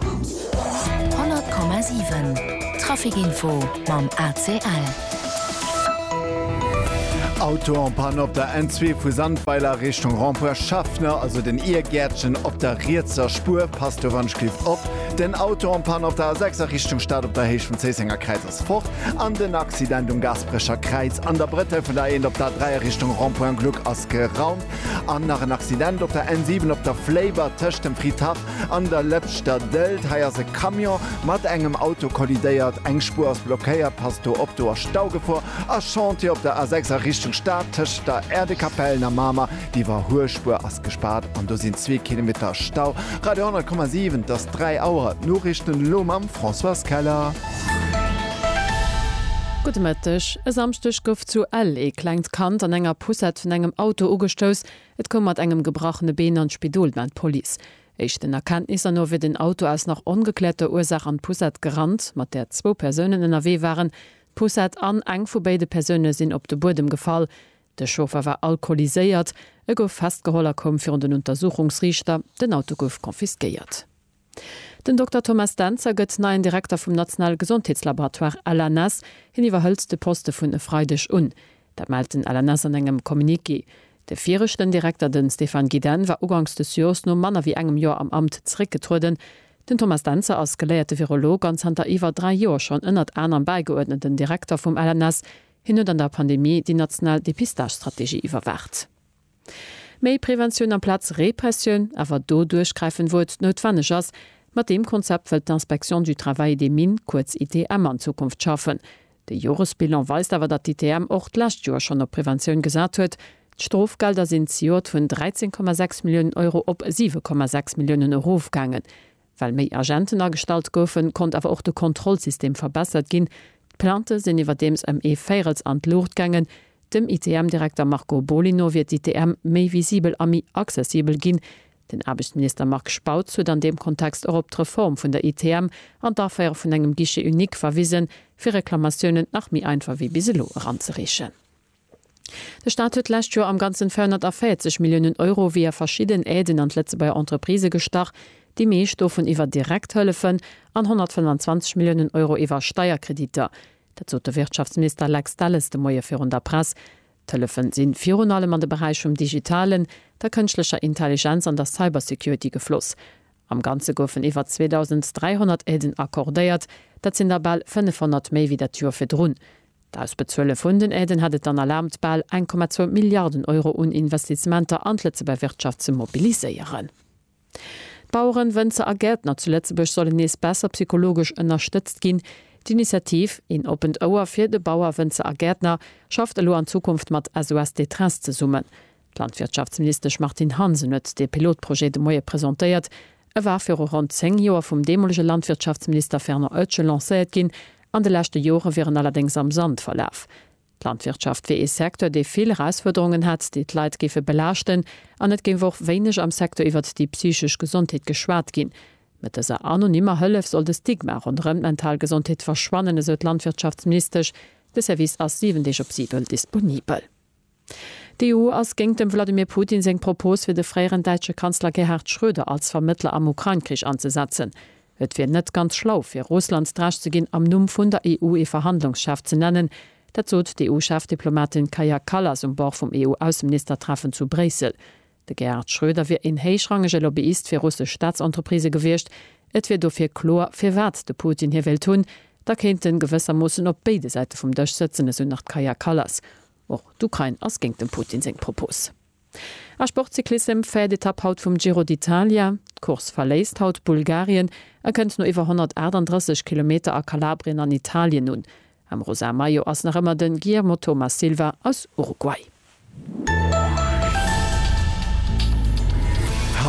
100,7 Trafic Info mam ACL. Auto en panne op der N2 vu Sandweiler Richtung Rond-point Schaffner, also den Iergäertchen op der rietser Spuer. Passt do wann ech cliff op. Den Auto en panne op der A6 a Richtung Stad op der Héicht vum Zéissenger Kräiz ass fort an den Accident um Gasperecher Kräiz an der Brëttel vun der A1 op der A3 a Richtung Rond-point Gluck ass geraumt. An nach en Accident op der N7 op der Fléiber tëscht dem Friedhaff An der Lëpschter Dëlt, hei ass e Camion mat engem Auto kollidéiert, eng Spuer ass blockéiert, passt do op, do ass Staugefor. A Chantier op der A6 a Richtung Stad, tëscht der Aire de Capellen a Mamer, déi iwwerhuecht Spuer ass gespaart an do sinn zwee Kilometer Stau. Radio 100,7, et ass 3 Auer, d'Noriichten elo mam Françoise Keller. Gudde Mëtteg. E Samschdeg gouf zu Ell ee klengt Kand an enger Poussette vun engem Auto ugestouss, Et koum mat engem gebrachene Been an d'Spidol, mellt d'Police. Éischten Erkenntnisser no wier den Auto aus nach ongekläerter Ursaach an d'Poussette gerannt, mat där zwou Persounen ënnerwee waren. D'Poussette an eng vu béide Persoune sinn op de Buedem gefall. De Chauffer war alkoholiséiert. E gouf festgeholl a koum virun den Untersuchungsriichter. Den Auto gouf confisquéiert. Den Dokter Thomas Dentzer gëtt neien Direkter vum nationale Gesondheetslaboratoire LNS. Hien iwwerhëlt de Poste vun e Freideg un. Dat mellt den LNS an engem Communiqué. De viregten Direkter, de Stéphane Guidenne, war ugangs des Joers no manner wéi engem Joer am Amt zeréckgetrueden. Den Thomas Dentzer ass geléierte Virolog an zanter iwwer dräi Joer schonn ënnert anerem bäigeuerdneten Direkter vum LNS. Hien huet an der Pandemie déi national Depistagestrategie iwwerwaacht. Méi Preventioun amplaz Repressioun, awer do duerchgräifend, wou et noutwenneg ass. Mat deem Konzept wëllt d'Inspection du Travail et des Mines, kuerz ITM, an Zukunft schaffen. De Joresbilan weist awer, datt d'ITM och d'lescht Joer schonn op Preventioun gesat huet. D'Strofgelder sinn zejoert vun 13,6 Milliounen Euro op 7,6 Milliounen erofgaangen. Well méi Agenten agestallt goufen, konnt awer och de Kontrollsystem verbessert ginn. D'Plaintë sinn iwwerdeems ëm ee Véirels an d'Luucht gaangen. Dem ITM-Direkter Marco Boly no wier d'ITM méi visibel a méi accessibel ginn. Den Aarbechtsminister Marc Spautz huet an deem Kontext och op d'Reform vun der ITM an d'Aféiere vun engem Guichet unique verwisen, fir Reklamatiounen nach méi einfach wéi bis elo eranzereechen. De Staat huet d'lescht Joer am Ganzen 440 Milliounen Euro via verschidden Aiden an d'Lëtzebuerger Entreprisë gestach, déi meescht dovun iwwer direkt Hëllefen an 125 Milliounen Euro iwwer Steierkrediter. Dat sot de Wirtschaftsminister Lex Delles de Moie virun der Press. D'Hëllefe si virun allem an de Beräich vum Digitalen, der Kënschtlecher Intelligenz an der Cybersecurity gefloss. Am Ganze goufen iwwer 2.300 Aiden accordéiert, dat sinn der bal 500 méi wéi dat Joer virdrun. D'Ausbezuele vun den Aiden hätt et dann erlaabt, bal 1,2 Milliarden Euro un Investisementer an d'Lëtzebuerger Wirtschaft ze mobiliséieren. D'Baueren, Wënzer a Gäertner zu Lëtzebuerg sollen nees besser psychologesch ënnerstëtzt ginn. D'Initiativ Een oppent Ouer fir de Bauer, Wënzer a Gäertner schafft elo an Zukunft mat SOS Détresse zesummen. D'Landwirtschaftsministesch Martine Hansen huet dee Pilotprojet de Moie presentéiert. E war viru ronn 10 Joer vum deemolege Landwirtschaftsminister Fernand Oetsch lancéiert ginn. An de leschte Jore wier en allerdéngs am Sand verlaf. D'Landwirtschaft wier ee Secteur, dee vill Erausfuerderungen hätt, déi d'Leit géife belaaschten. An et géif och wéineg am Secteur iwwert déi psychesch Gesondheet geschwat ginn. Mat dëser anonymer Hëllef soll de Stigma ronderëm d'mental Gesondheet verschwannen, esou d'Landwirtschaftsministesch. De Service ass 7 Deeg op si duerno disponibel. D'EU ass géingt dem Wladimir Putin seng Propos fir de fréieren däitsche Kanzler Gerhard Schröder als Vermëttler am Ukrain-Krich anzesetzen. Et wier net ganz schlau fir Russland d'Recht ze ginn, am Numm vun der EU ee Verhandlungschef ze nennen. Dat sot d'EU-Chefdiplomatin Kaja Kallas um Bord vum EU-Ausseministertreffen zu Bréissel. De Gerhard Schröder wier een héichrangege Lobbyist fir russesch Staatsentreprisë gewiescht. Et wier dofir kloer, firwat de Putin hie wéilt hunn. Da kéint en gewëssermoossen op béide Säite vum Dësch sëtzen, esou nach d'Kaja Kallas. Och d'Ukrain ass géint dem Putin seng Propos. A Sportcyclissem, Fait d'Etapp haut vum Giro d'Italia, D'Course verléisst haut Bulgarien a kënnt no iwwer 138 Kilometer a Kalabrien an Italien un. Am rosa Maillot ass nach ëmmer den Guillermo Thomas Silva aus Uruguay.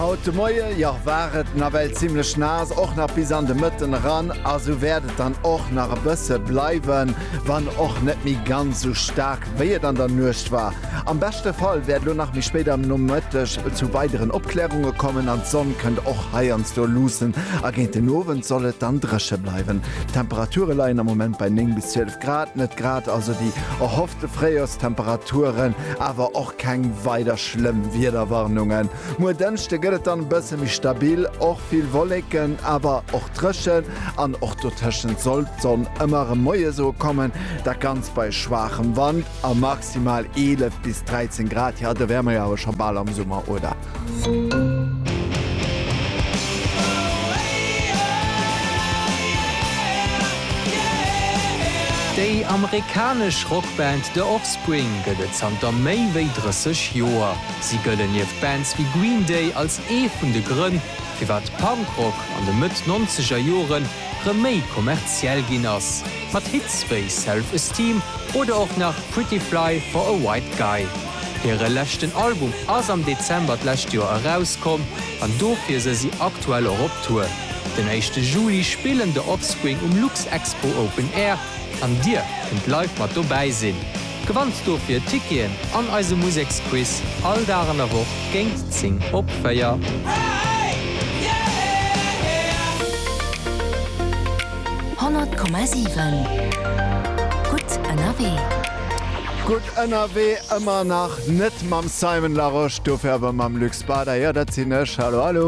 Haut de Moie, jo, war et nawell zimmlech naass, och nach bis an de Mëtten eran, a sou wäert et dann och nach e bësse bleiwen, wann och net méi ganz sou staark wéi et an der Nuecht war. Am beschte Fall wäert elo nach méi spéit am Nomëtteg zu weideren Opklärunge kommen an d'Sonn kënnt och heiansdo luussen a géint den Owend soll et dann dréche bleiwen. D'Temperature leien am Moment bei 9 bis 12 Grad, net grad also déi erhoffte Fréijorstemperaturen, awer och keng weider schlëmm Wiederwarnungen. Muer Dënschde gëtt et dann e bësse méi stabil, och vill Wolleken, awer och dréchen an och dotëschent soll d'Sonn ëmmer erëm moies ukommen, dat Ganzt bei schwaachem Wand a maximal 11 bis 13 Grad. Jo, do wäre mer jo awer scho bal am Summer, oder? Déi amerikanesch Rockband The Offspring gëtt et zanter méi wéi 30 Joer. Si gëllen nieft Bands wéi Green Day als ee vun de Grënn, firwat Punkrock an de Mëtt-Nonzeger Jore rëm méi kommerziell ginn ass, mat Hits wéi Self Esteem oder och nach Pretty Fly for a White Guy. Hire leschten Album ass am Dezember d'lescht Joer erauskomm an dofir se si aktuell och op Tour. Den éischte Juli spillen The Offspring um Luxexpo Open Air an Dir kënnt live mat dobäi sinn. Gewannt dofir Ticketen an eise Museksquiz all Dag an der Woch géint 10 op 4. Honnert Komma siwen, gutt ënnerwee! Gutt ënnerwee, ëmmer nach net mam Simon Larosche, dofir awer mam Luc Spada. Jo, dat sinn ech. Hallo, hallo.